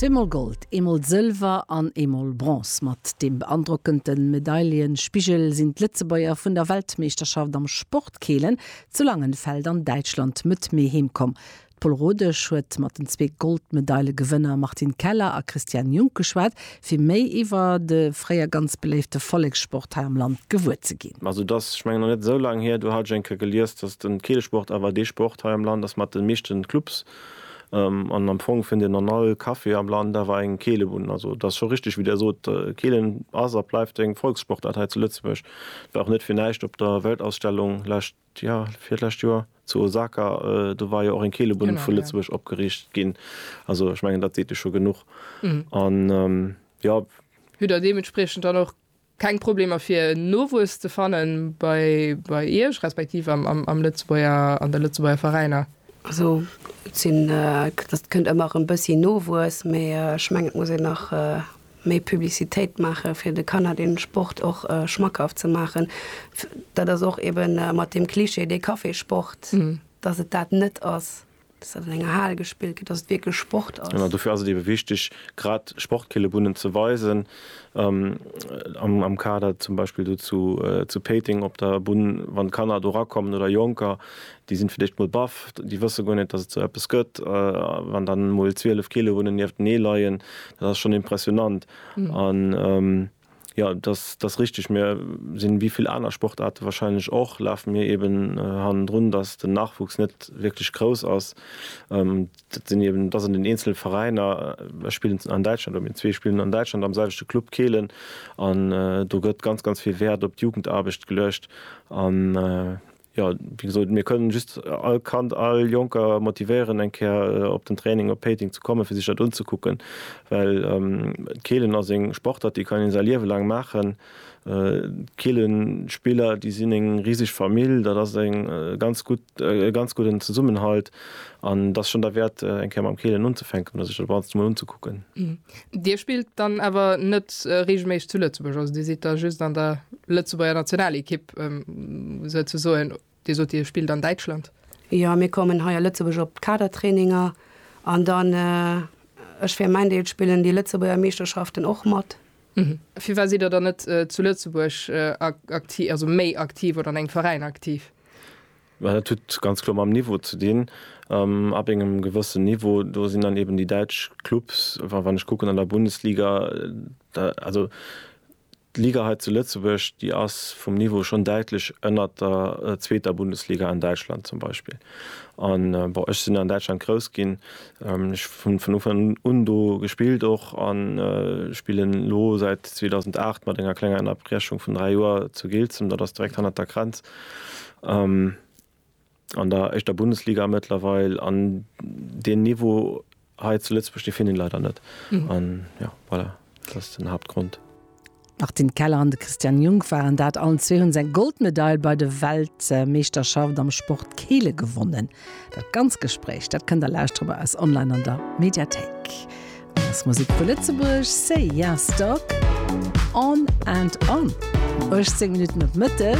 Zweemol Gold, eemol Sëlwer an eemol Bronze. Mat deem beandrockende Medaillenspigel sinn d'Lëtzebuerger vun der Weltmeeschterschaft am Sportkeelen zu Langenfeld an Däitschland mëtt Mee heem komm. D'Pol Rodesch huet mat den zwee Goldmedaile-Gewënner Martine Keller a Christiane Junk geschwat, fir méi iwwer de fréier ganz beléifte Vollekssport hei am Land gewuer ze ginn. Also et ass, ech mengen, nach net esou laang hier, do hat ech eng Kéier gelies, dass den Keelesport awer dee Sport hei am Land ass mat de meeschten Clubs. An am Fong fënnt een an all Café am Land awer eng Keelebunn. Also et ass scho richteg, wéi Der sot, Keelen ass a bleift eng Volkssportart hei zu Lëtzebuerg. Et war och net fir näischt op der Weltausstellung lescht. Jo, virlescht Joer zu Osaka, do war jo och eng Keelebunn vu Lëtzebuerg opgeriicht ginn. Also ech mengen, dat seet jo scho genuch. An jo. Hutt Der deementspriechend dann och keng Problemer fir Nowuess ze fanne bei Iech, respektiv an de Lëtzebuerger Veräiner? Also et kënnt ëmmer erëm e bëssi Nowuess, mee ech mengen et muss een nach méi Publicitéit maache fir de Kanner dee Sport och schmackhaft ze maachen. Dat ass och ebe mat deem Klischee, dee Cafésport, datt et dat net ass, datt dat an enger Hal gespillt gëtt, datt et wierklech Sport ass. Genau, dofir ass et ebe wichteg, grad Sportkillebunnen ze weisen. Am Kader zum Beispill do zu Péiteng op der Bunn, wann Kanner do rakommen oder Jonker, Déi sinn fir d'éischt mol baff, déi wësse guer net, dass et sou eppes gëtt. Wann dann emol 12 Kilo Wunnen nieftenee leien, dat ass schonn impressionant. An jo, dass ass richteg. Mir sinn, wéi vill aner Sportaarte wahrscheinlech och, lafe mir eben hannendrun, dass den Nachwuchs net wierklech grouss ass. Dat sinn eben, et ass an den eenzele Veräiner. Ech spillen an Däitschland, oder mir zwee spillen an Däitschland am selwechte Club Kehlen. An do gëtt ganz, ganz vill Wäert op d'Jugendarbecht geluecht. Jo, wéi gesot, mir kënnen just all Kand, all Jonker motivéieren, eng Kéier op den Training op Péiteng ze kommen, fir sech dat unzekucken, well d'Keelen ass eng Sportart, déi kann een säi Liewe laang maachen. D'Keelenspiller, déi sinn eng riseg Famill, dat ass e ganz gudden Zesummenhalt an et ass schonn derwäert, eng Kéier mam Keelen unzefänken oder sech dat Ganzt emol unzekucken. Dir spillt dann awer net reegelméisseg zu Lëtzebuerg, also Dir sidd da just an der Lëtzebuerger Nationalekipp souzesoen. Dir sot, Dir spillt an Däitschland. Jo, mir kommen hei a Lëtzebuerg op d'Kadertraininger an dann, ech fir mäin Deel, spillen déi Lëtzebuerger Meeschterschaften och mat. Firwat sidd Der dann net zu Lëtzebuerg aktiv, also méi aktiv oder an engem Veräin aktiv? Mä dat huet ganz kloer mam Niveau ze dinn. Ab engem gewëssen Niveau, do sinn dann eben déi däitsch Clubs, wa wann ech kucken an der Bundesliga, da also d'Liga hei zu Lëtzebuerg, déi ass vum Niveau schonn däitlech ënnert der zweeter Bundesliga an Däitschland zum Beispill. An bon, ech sinn an Däitschland grouss ginn, ech hunn vun Ufank un do gespillt och an spillen elo säit 2008 mat enger klenger Ënnerbrechung vun dräi Joer zu Giltzem, dat ass direkt hannert der Grenz. an der éischter Bundesliga mëttlerweil an deen Niveau hei zu Lëtzebuerg dee finn een leider net an jo voilà dat ass den Haaptgrond. D'Martine Keller an de Christian Jung waren dat. Allen zwee hunn se eng Goldmedail bei de Weltmeeschterschaft am Sport Keele gewonnen. Dat ganz Gespréich dat kënnt der lauschteren bei eis online an der Mediathéik. Ass Musek vu Lëtzebuerg, Say Yes Dog, On and On, 18 Minutten op Mëtteg.